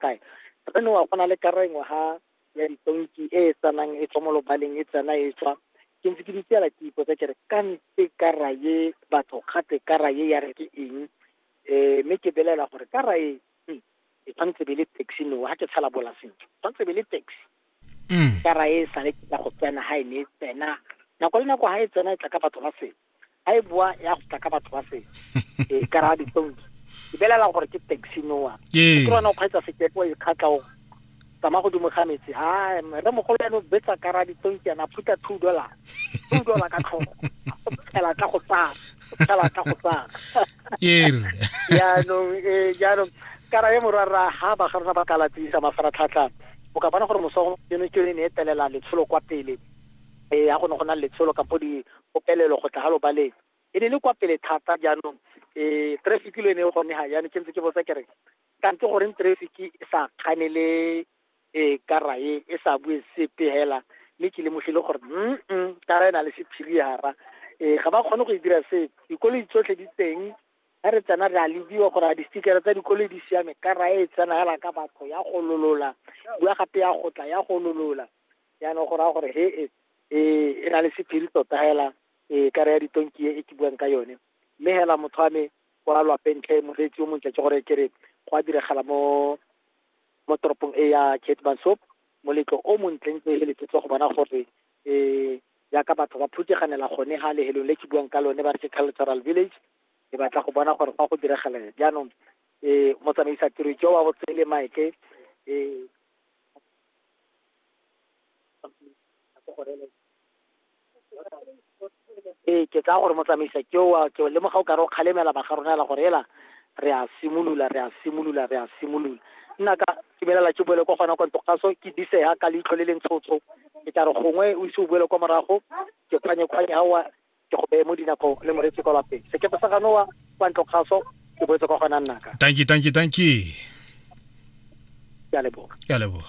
kae re ne wa go na le kara engwe ha ya ditonki e e tsanang e tswa mo lobaleng e tsena e tswa ke ntse ke ditsela ke ipotsa ke re ka ntse kara ye batho gate kara ye ya re ke eng um mme ke belela gore kara e hmm, e tshwanetse be le taxi no ga ke tshala bola sentle tshwanetse be le taxi mm. kara e sale ka go tsena ha e ne e tsena nako le nako ha e tsena e tla ka batho ba sele a e boa ya go tla ka batho ba se e ka ra ditonki e belela gore ke taxi noa ke rona o kgweetsa sekepo e kgatla o tsamaya godimo ga metsi a re mogolo ene o betsa ka ra ditonki yana phuta two dollar two dollar ka tlhogo o phela ka go tsaya o phela ka go tsaya jaanong ee jaanong kara ye morwarra ha ba ga rona ba ka latsisa mafaratlhatlha o ka bona gore mosogo eno ke yone ne e telela letsholo kwa pele e ya go ne go na le letsholo kapo di Popelelo go tla ga lobaleng e ne le kwa pele thata jaanong e traffic lo ene gone ha yana ke ntse ke botsa ke re kante goreng traffic e sa kgane le e kara e e sa bue sepe hela mme ke lemogile gore mm kara e na le sephiri hara e ga ba kgone go e dira se dikoloi tsotlhe di teng ga re tsena re a lebiwa gore a di-sticker tsa dikoloi di siame kara e tsena hela ka batho ya gololola bua gape ya gotla ya gololola Jaanong go raya gore he e e e na le sephiri tota hela e kare ya ditonki e ke buang ka yone mme hela motho wa me kwa lwapeng tlhe moreetsi o montle ke gore ke re go a diragala mo mo toropong e ya ketmansop moletlo o montleng tse le ke tlo go bona gore um jaaka batho ba phuteganela gone ga lehelong le ke buang ka lone ba re ke cultural village ke batla go bona gore fa go diragala jaanong um motsamaisa tiro ke wa botsele mike um ee ke tsaya gore motsamaisa ke oa ke lemoga o kare o kgalemela ba ga rona ela gore ela re a simolola re a simolola re a simolola nna ka ke belela ke boele kwa gona kwa ntogaso ke disega ka leitlho le le ntshotsho ke tla re gongwe o ise o boele kwa morago ke kgwanye kgwanye ga oa ke go beye mo dinakong le moreetsi kwa lapeng sekepe sa ganoa kwa ntlo kgaso ke boetse kwa gona nnaka tanki tanki tanki ke a leboga ke a leboga